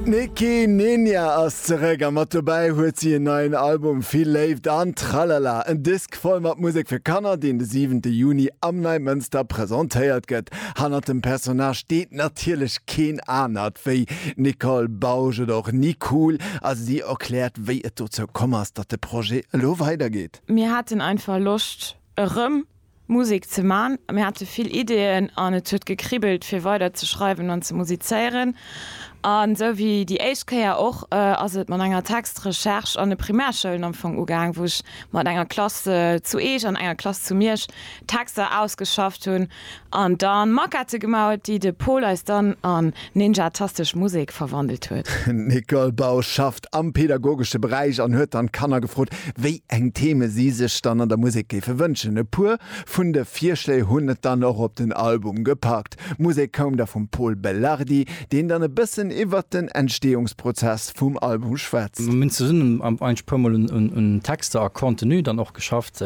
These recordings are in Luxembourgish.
D'Nicki Ninja ass zeréck a mat dobäi huet si en neien Album Vill Léift an Tralala, en Disk voll mat Musek fir Kanner, deen de siwente Juni am Neimënster presentéiert gëtt. Hannert dem Personnage steet natierlech keen anert wéi d'Nicole Bausch oder och Nicool a si erkläert, wéi et dozou komm ass, datt de Projet elo weidergeet. Mir haten einfach Loscht erëm Musek ze man. Mir hate vill Ideeën an et huet gekribbelt fir weider ze schreiwen an ze musizéieren. An esou wéi déi éischt Kéier och ass et mat enger Textrecherche an de Primärschoulen am Fong ugaang, wou ech mat enger Klass zu Eech an enger Klass zu Miersch Texter ausgeschafft hunn an da Maquette gemaut, déi de Paul eis dann an ninjatastesch Musek verwandelt huet. D'Nicole Bausch schafft Aarbecht am pedagogesche Beräich an huet dann d'Kanner gefrot, wéi eng Theme si sech dann an der Musek géife wënschen. E puer vun de Virschléi hunn et dann och op den Album gepackt. D'Musek koum da vum Pol Belardi, deen dann e bëssen iwwert den Entsteeungsprozess vum Album schwätzt. Mir hunn zesummen eis puer mol un Texter a Contenu dann och geschafft.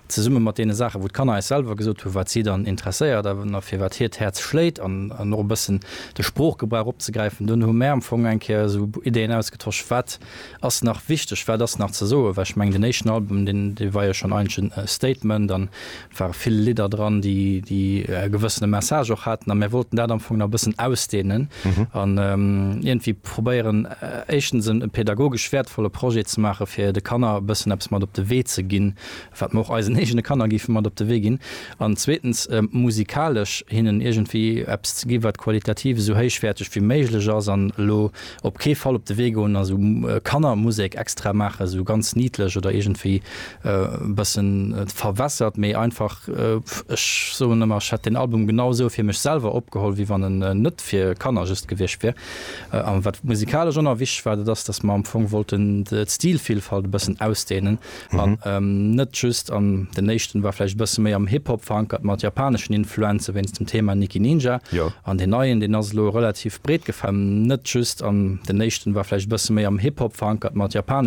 zesumme mat deene Saachen, wou d'Kanner eis selwer gesot hunn, wat si dann interesséiert a fir wat hiert Häerz schléit, an och e bëssen de Sproochgebrauch opzegräifen, dunn hu mär am Fong eng Kéier esou Ideen ausgetosch, wat ass nach wichteg, wat ass nach ze soen, well ech mengen, deen éischten Album, dee war jo schonn eigentlech e Statement an ware vill Lidder dran, déi e gewëssene Message och haten, a mär wollten dat am Fong nach e bëssen ausdeenen an iergendwéi probéieren, éischtens e pädagogesch wäertvolle Projet ze maachen, fir de Kanner e bëssen eppes mat op de Wee ze ginn. wat mer och eisen eegene Kanner géife mat op de Wee ginn, an zweetens musikalesch hinnen iergendwéi eppes ze gi wat qualitativ esou héichwäerteg wéi méiglech ass, an elo op kee Fall op de Wee goen a sou Kannermusek extra maachen, sou ganz niedlech oder iergendwéi e bëssen verwässert, mee einfach, ech soen ëmmer, ech hätt deen Album genau esou fir mech selwer opgeholl wéi wann en net fir Kanner just gewiescht wier. A wat musikalesch onerwich war, dat ass, datt mer am Fong wollten d'Stilvielfalt e bëssen ausdehnen, An net just an, den éischten war vläicht e bësse méi am Hip Hop verankert mat japaneschen Influenze wéinst dem Thema Nicki Ninja. An deen neien, deen ass elo relativ breet gefäll. Net just an, den éischten war vläicht e bësse méi am Hip Hop verankert mat japaneschen.